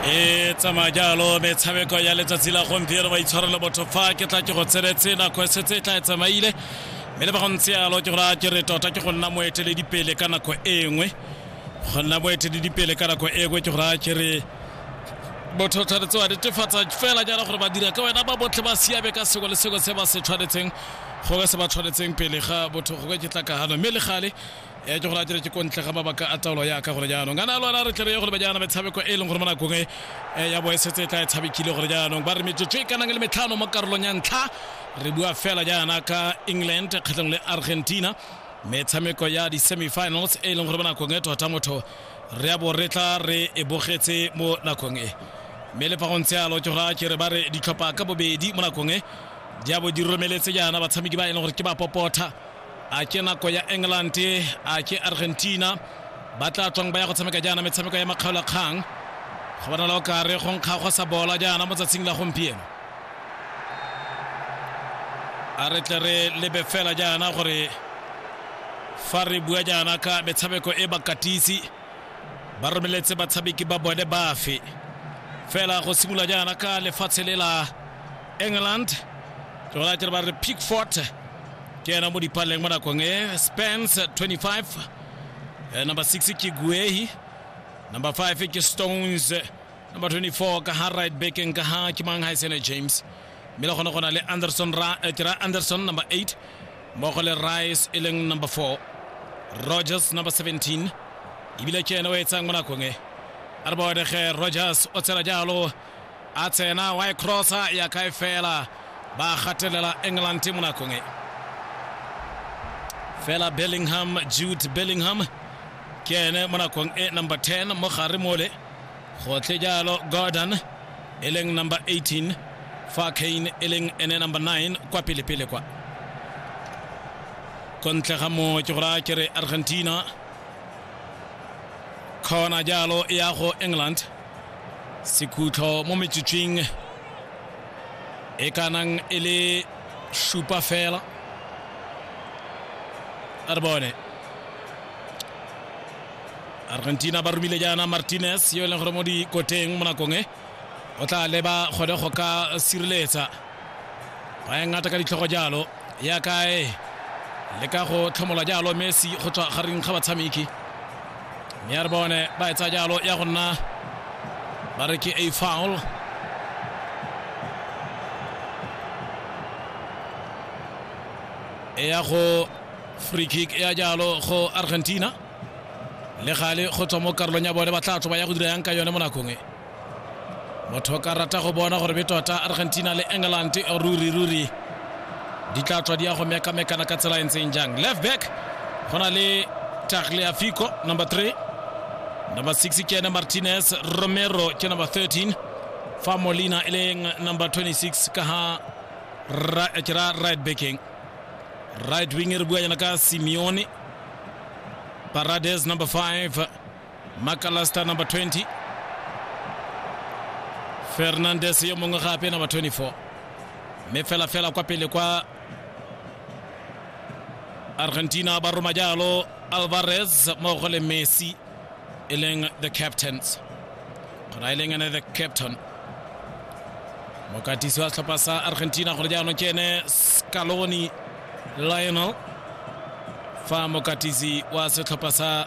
e tsamaya jalo metshameko ya letsatsi la gompieno ba itshwarelo botho fa ke tla ke go tseretse nako e setse e tla e tsamaile mme le ba go ntse yalo ke gore ke re tota ke go nna moeteledipele ka nako e nngwe go nna moeteledipele ka nako e nngwe ke gore ke re motho o tshwanetse wa netefatsa fela jaana gore ba dira ka wena ba botlhe ba siame ka sengwe le sengwe se ba se tshwanetseng gongwe se ba tshwanetseng pele ga botho gongwe ke tlakagano mme le gale e ke go ratile ke kontle ga mabaka a taolo yaka gore jaanong kana lona re tle re ye gore ba jaana metshameko e leng gore mo nakong e eh, ya boesetse e tla e tshamekile gore jaanong ba re metsotso e kanang le metlhano mo karolong ya ntlha re bua fela jaana ka england kgatlhang le argentina metshameko ya di-semifinals e leng gore mo nakong e tota motho re a bo re tla re e bogetse mo nakong e mme le fa go ntse alo tsoga ke re ba re ditlhopha ka bobedi mo nakong e di a bo di romeletse jaana batshameki ba e leng gore ke ba popotha a ke nako ya england a ke argentina ba tla tswang ba ya go tshameka jaana metshameko ya makgaolakgang go bonala o kare go nkga go sa bola jaana mo tsatsing la gompieno a re tle re lebe fela jaana gore fa re bua jaana ka metshameko e bakatisi ba romeletse batshameki ba bone bafe fela go simolola jaana ka lefatshe le la england ke gona tere ba re pickfort ke ena mo dipaleng mo nakong e spence 25 eh, number 6 ke guehi number 5 ke stones number 24 ka ha right backeng ka ha ke mang ha e sene james mme le gone go na le anderson ra eh, ke ra anderson number 8 mmogo le rice e leng number 4 rogers number 17 ebile ke ene o etsang mo nakong e a re boedege rogers o tshela jalo a tsena wa e crossa ya kae fela ba gatelela england mo nakong e fela bellingham jude bellingham ke ene mo nakong e number 10 mo gare mole gotlhe jalo gordon e leng number 18 fa kane e leng ene number 9 kwa pelepele kwa ko ntle ga mo ke go raya ke re argentina kgona jalo e ya go england sekhutlho mo metsotsweng e kanang e le šupa fela a re bone argentina ba romile jaana martinez yo e leng gore mo dikoteng mo nakong e o tla leba kgone go ka sireletsa ba e ngata ka ditlhogo jalo ya kae le ka go tlhomola jalo messi go tswa gareng ga batshameki mme ya re bone ba etsa jalo ya go nna ba re ke a foul e ya go free kick ya jalo go argentina le gale go tswa mo karolong ya bone ba tla tloba ya go dira yang ka yone mo nakong e motho ka rata go bona gore be tota argentina le england ruri ruri di tla tswa di ya go mekamekana ka tsela e ntseng jang left back go na le tagliafico number 3 number 6 ke ene martinez romero ke number 13 fa molina e leng number 26 ka ha ra, ke ra right backing right wing re bua yana ka simeone Parades number 5, Macalester number 20, Fernandez yo mongwe gape number 24. Mme fela fela kwa pele kwa Argentina ba roma jalo Alvarez mmogo le Messi e leng the captains. Gona e leng ene the captain. Mokatisi wa setlhopha sa Argentina gone jaanong ke ene Scaloni lionel fa mokatisi wa setlhopha sa